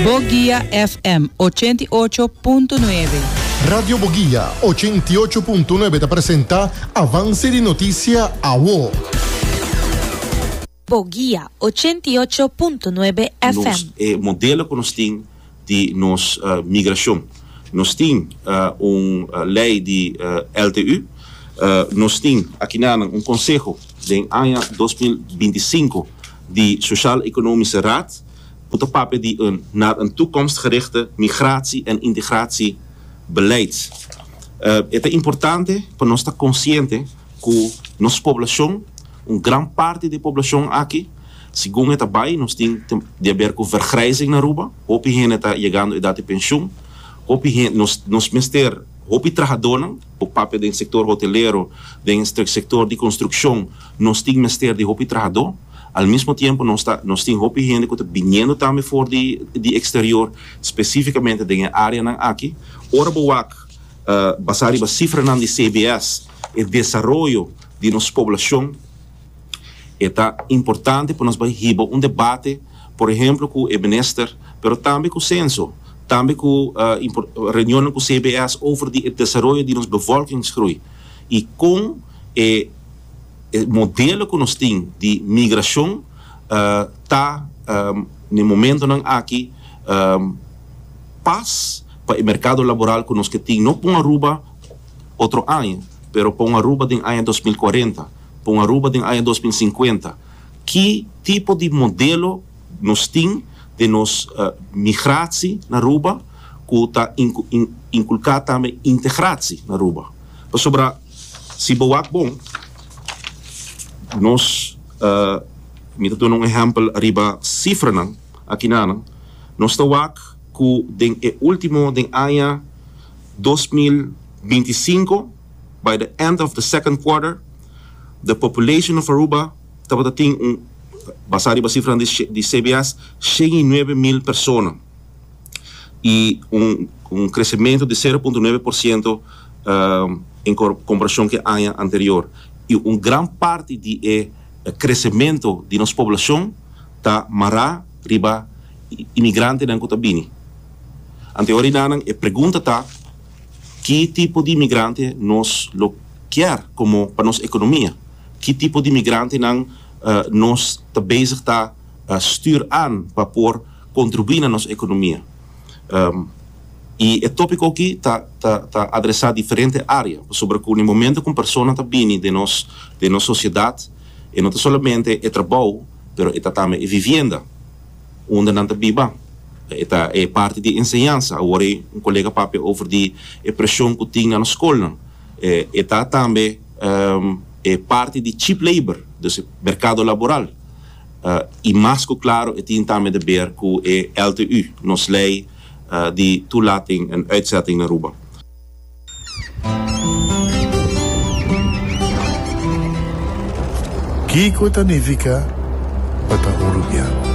Boguia FM ochenta i ocho punto nuebe. Radio Boguia ochenta i ocho punto nuebe ta presenta Avance di Noticia Awo. Boguia ochenta i ocho punto nuebe FM. Nos e modelo cu nos tin di nos migracion. Nos tin un ley di LTU. Nos tin aki nanan un conseho den aña dos mil binti sinku di Sociaal Economische Raad. Bo ta papia di un naar een toekomstgerichte migratie en integratie beleid. E ta importante pa nos ta consciente cu nos poblacion, un gran parti di e poblacion aki, segun e ta bay nos tin te di haber cu vergrijzing na Aruba, hopi hende ta yegando edad di pensioen, hopi hende, nos, nos mester hopi trahadonan, bo papia den sector hotelero, den sector di construccion, Nos tin mester di hopi trahadó. Al mismo tiempo nos ta nos tin hopi hende cu ta biniendo tambe for di di exterior, specificamente den e areanan aki. Ora bo wak basá riba cifranan di CBS e desaroyo di nos poblacion, e ta importante pa nos bai hiba un debate, por ehemplo cu e Minister, pero tambe cu Censo, tambe cu reunionnan cu CBS over di e desaroyo di nos bevolkingsgroei y con e. e modelo cu nos tin di migracion ta na e momentonan aki pas pa e mercado laboral cu nos ke tin no pa un Aruba otro aña pero pa un Aruba den aña dos mil cuarenta, pa un Aruba den aña dos mil cincuenta. Ki tipo di modelo nos tin den nos migratie na Aruba cu ta inculca tambe integratie na Aruba? Pasobra. Si bo wak bon, nos mi ta duna un ehèmpel riba sifranan aki na nan. Nos ta wak ku den e último den aña dos mil binti i sinku, by the end of the second quarter, the population of Aruba tabata tin un, basá riba sifranan di CBS, shen i nuebe mil persona. y un crecemento di sero punto nuebe por ciento en comparacion cu e aña anterior y un gran parti di e crecemento di nos poblacion ta mara riba inmigrantenan cu ta bini. Ante ora y nanan e pregunta ta ki tipo di inmigrante nos lo kier como pa nos economia? Ki tipo di inmigrantenan nos ta bezig ta stuur aan pa por. contribui na nos economia. Y e topico aki ta adresa diferente area, pasobra cu na e momento cu un persona ta bini den nos den nos sociedad e no ta solamente e trabou pero e ta tambe e vivienda unda nan ta biba, e ta e parti di enseñansa, awor un colega papia over di e presion cu tin na nos schoolnan, e ta tambe e parti di cheap labor, dus e mercado laboral. i mas ku klaro e tin tambe te ber ku e LTU, nos lei di toelating en uitzetting na Aruba. Kiko ta nifiká pa ta Urubiano?